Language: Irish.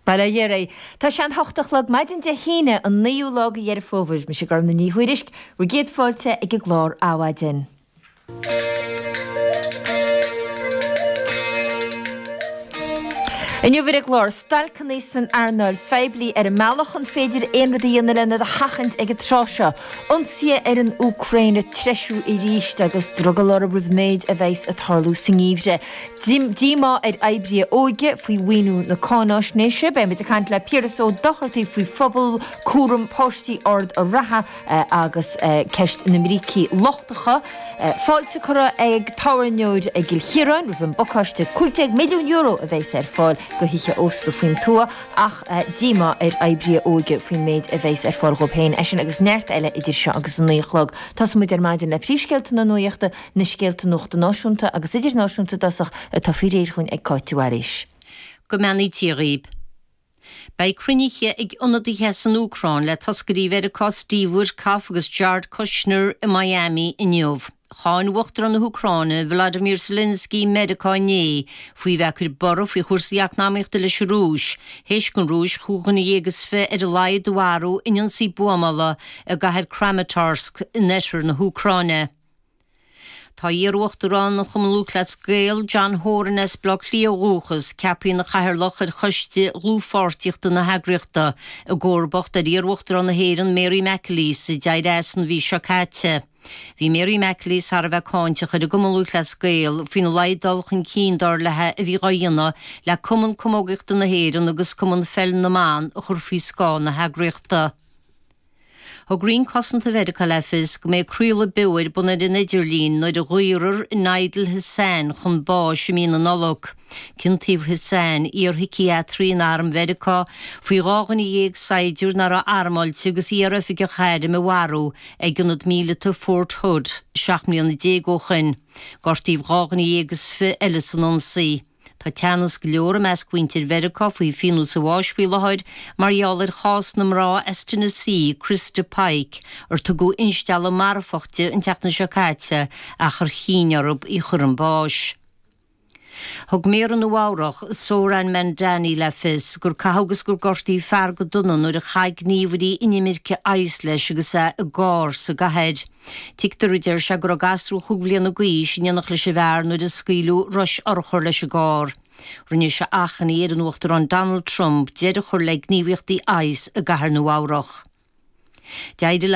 Bail ó Dhia oraibh. Tá sé an hocht a chlog maidin Dé hAoine an naoú lá de Dheireadh Fómhair. Mise Gormfhlaith Ní Thuairisg. Bhur gcéad fáilte ag an gclár Adhmhaidin. Inniu ar an gclár, stailceanna san earnáil phoiblí ar an mbealach, an féidir aon rud a dhéanamh len iad a sheachaint ag an tráth seo? Ionsaí ar an Úcráin ag treisiú arís agus drogall orthu roimh an méid a bheas ag tarlú sa ngeimhreadh. Díomá ar oibrithe óige faoi mhaoiniú na cáinaisnéise. Beidh muid ag caint le Piaras Ó Dochartaigh faoi phobal cúram páistí Ard a' Ratha agus ceist na mbrící lochtacha. Fáilte curtha ag tábhairneoir i gCill Chiaráin roimh an bpacáiste €15 milliún a bheas ar fáil do thithe ósta faoin tuath ach díomá ar oibrithe óige faoin méid a bheas ar fáil dhóibh féin. É sin agus neart eile idir seo agus a naoi a chlog. Tosóidh muid ar maidin le príomhscéalta na Nuaíochta, na scéalta nuachta náisiúnta agus idirnáisiúnta i dtosach atá faoi réir chugainn ag Cáit de Bhailís. Go mbeannaí Dia dhaoib. Beidh cruinnithe ag ionadaithe as an Úcráin le toscairí Mheiriceá Steve Witkoff agus Jared Kushner i Miami inniu. Cháin Uachtarán na hÚcráine Volodymyr Zelensky Meiriceá inné faoi bheith ag cur borradh faoi chúrsaí eacnamaíochta leis an Rúis, théis don Rúis chúig dhuine dhéag is fiche ar a laghad a mharú in ionsaí buamála i gcathair Kramatorsk in oirthear na hÚcráine. Tá iar-uachtarán ar Chumann Lúthchleas Gael, John Horan as Baile Átha Cliath ó dhúchas, ceaptha ina chathaoirleach ar choiste dhlúthpháirtíochta na heagraíochta, i gcomharbacht ar iar-uachtarán na hÉireann, Mary McAleese, a d'éirigh as an mhí seo caite. Bhí Mary McAleese thar a bheith cáinteach ar an gCumann Lúthchleas Gael faoina laghad dul chun cinn, dar leithe, a bhí dhá dhéanamh le Cumann Camógaíochta na hÉireann agus Cumann Pheil na mBan a chur faoi scáth na heagraíochta. Thug Roinn Cosanta Mheiriceá le fios go mbeidh craoladh beo ar bun ar an idirlíon nuair a dhaorfar Nidal Hasan chun báis i mí na Nollag. Ciontaíodh Hasan, iar-shíciatraí in arm Mheiriceá, faoi dhá dhuine dhéag saighdiúir nach raibh armáilte agus iar-oifigeach airm a mharú ag ionad míleata Fort Hood seacht mbliana déag ó shin. Gortaíodh dhá dhuine dhéag is fiche eile san ionsaí. Tá teannas go leor i measc mhuintir Mheiriceá faoi phionós an bháis faoi láthair mar gheall ar chás na mná as Tennessee, Christa Pike, ar tugadh instealladh marfach di an tseachtain seo caite ach ar chinn orthub í a chur chun báis. Thug Méara Nua-Eabhrac, Zohran Mamdani le fios gur caitheadh agus gur gortaíodh fear go dona nuair a chaith gníomhairí inimirce ICE leis agus é i gcarr sa gcathair. Tuigtear, a deir sé, go raibh gasúr chúig bhliana d'aois in éineacht leis an bhfear nuair a scaoileadh rois urchar leis an gcarr. Rinne sé achainí ar an Uachtarán Donald Trump deireadh a chur le gníomhaíochtaí ICE i gCathair Nua-Eabhrac. D'éirigh